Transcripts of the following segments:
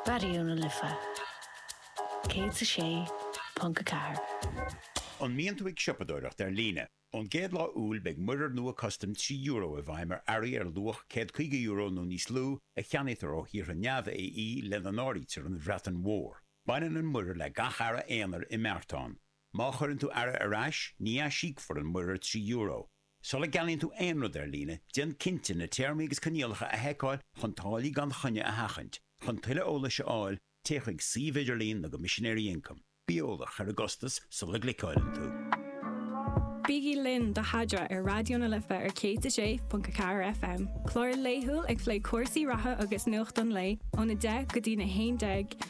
Raidió na Life 106.4. An mbíonn tú ag siopadóireacht ar líne? Ón gcéad lá Iúil beidh muirear nua custaim trí euro i bhfeidhm ar earraí ar luach €150 nó níos lú a cheannaítear ó thíortha neamh-AE, lena n-áirítear an Bhreatain Mhór. Baineann an muirear le gach earra aonair i mbeartán. Má chuireann tú earra ar ais, ní aisíocfar an muirear €3. Sula gceannaíonn tú aon rud ar líne, déan cinnte na Téarmaí agus Coinníollacha a sheiceáil chun táillí gan choinne a sheachaint. Chun tuilleadh eolais a fháil, téigh chuig suíomh idirlín na gCoimisinéirí Ioncaim. Bí eolach ar an gcostas sula gcliceáileann tú. Bígí linn do Sheadra ar Raidió na Life ar 106.4 FM, clár laethúil ag plé cúrsaí reatha agus nuacht an lae, óna 10 go dtí'n 11,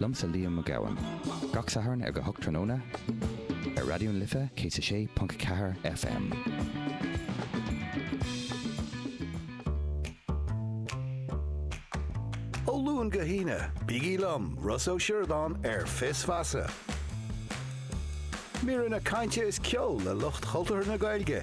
Liomsa Liam Mac Gabhann. Gach Satharn ag a hocht tráthnóna ar Raidió na Life 106.4 FM. Ó Luan go hAoine, bígí liom, Ros Ó Siúrdáin ar Fios Feasa. Míreanna cainte is ceol le lucht chultúrtha na Gaeilge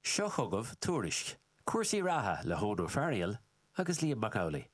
Seo chugaibh Tuairisc cúrsaí reatha le hEoghan Ó Fearghail agus Liam Mac Amhlaigh.